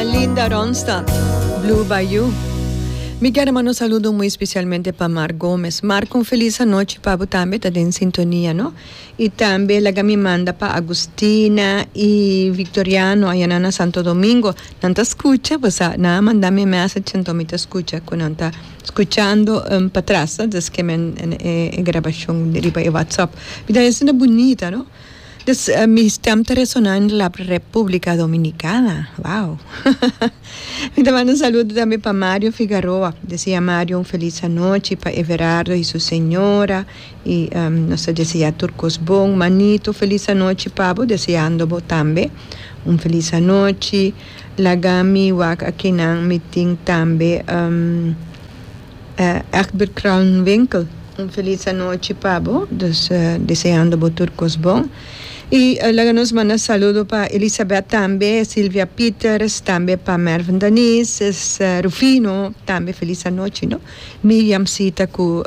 Linda Ronstadt, Blue Bayou. Mi kier a manda un saludo muy especialmente pa Marc Gomez. Marc un feliz anochi pa bo tambe ta den sintonia no. Y tambe laga mi manda pa Agustina y Victoriano ayana na Santo Domingo. Nan ta scucha bo sa, nan a manda mi e message enton mi ta scucha cu nan ta scuchando patras desque men e grabacion riba e WhatsApp. Mi ta hasi na bunita no. Dus mi stem ta resona in la Republica Dominicana. Wow. mi ta manda un saludo tambe pa Mario Figaroa. Desea Mario un feliz anochi, pa Everardo y su señora y um nos ta desea tur cos bon. Manito feliz anochi pa bo, deseando bo tambe un feliz anochi. Laga mi wak aki nan mi tin tambe um. Egbert Kruiwinkel un felis anochi pa bo dus deseando bo tur kos bon y laga nos manda saludo pa Elisabeth tambe Silvia Peters tambe pa Mervin Danice Rufino tambe felis anochi no Miriam Sita cu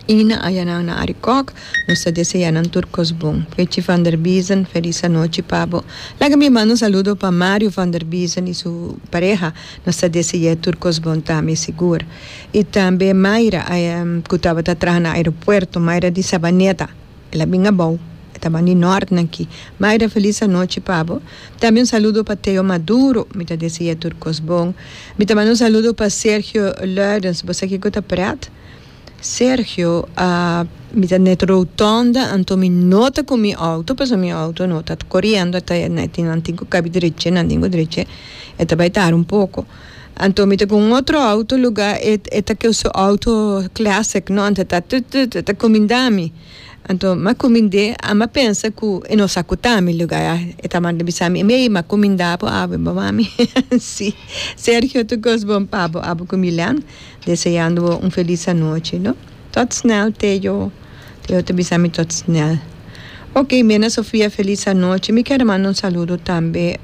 I na ayanan na Arikòk, nos ta deseá nan tur kos bon. Fritchie van der Biesen, felis anochi pa bo. Laga mi manda un saludo pa Mario van der Biesen i su pareha. Nos ta dese'é tur kos bon ta, mi sigur. I tambe Mayra, ku tabata traha na aeropuerto. Mayra di Sabaneta, el a bin abou, e tabatin di nòrtnan akí. Mayra, felis anochi pa bo. Tambe un saludo pa Theo Maduro, mi ta dese'é tur kos bon. Mi ta manda un saludo pa Sergio Luijens, bo sa kiko ta prèt? Sergio, Aa, mi ta net rotonda, anto mi no ta cu mi auto, pasobra mi auto no ta coriendo, ta e na tin, nan tin cu cabi dreche, nan tin cu dreche, e ta bai tara un poco. Anto mi ta cu un otro auto luga, e, e ta cu su auto classic, no, anto e ta tut, tut, e ta cumindami. Anto mi a cuminde, a mi a pensa cu e no sa cu ta mi luga ya. E ta manda bisa mi, mei, mi a cuminda bo awe, bo mami, si. Sergio, tu cos bon pa bo, abo cu Milan. Deseando bo un felis anochi no. Tot snel Teo Teo ta bisa mi tot snel ok Mena Sofia felis anochi mi kier a manda un saludo tambe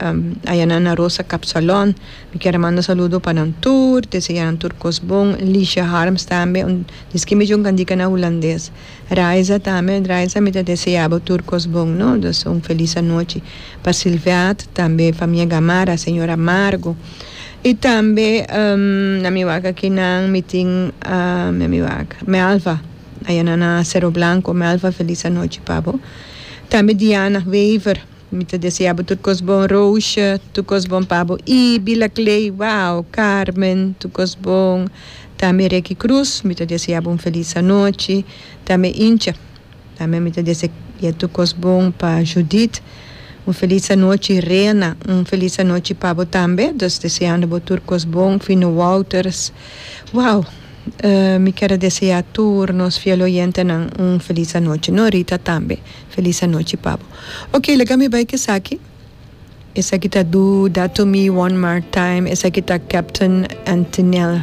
ayanan na Rosa Kapsalon mi kier a manda saludo pa nan tur deseá nan tur kos bon Lisha Harms tambe un diski mi yunka dika na hulandes Raiza tambe Raiza mi ta deseá bo tur kos bon no dus un felis anochi pa Silveat tambe famia Gamarra señora Margo Y tambe na mi wak aki nan mi tin na mi wak Melva ayana na Cerro Blanco Melva feliz anochi pa bo tambe Diana Wever mi ta desea bo tur cos bon Roosje tur cos bon pa bo y Bila Clay wow Carmen tur cos bon tambe Reky Cruz mi ta desea bo un feliz anochi tambe Incha. Tambe mi ta dese e tur cos bon pa Judith. Un feliz anochi Reina. Un feliz anochi pa bo tambe. Dus deseando bo tur cos bon. Fino Wouters. Wow! mi ker a desea tur nos fiel oyentenan un feliz anochi. Norita tambe feliz anochi pa bo. Ok laga mi bay cu esaki. Esaki ta Do that to me one more time. Esaki ta Captain Antinel.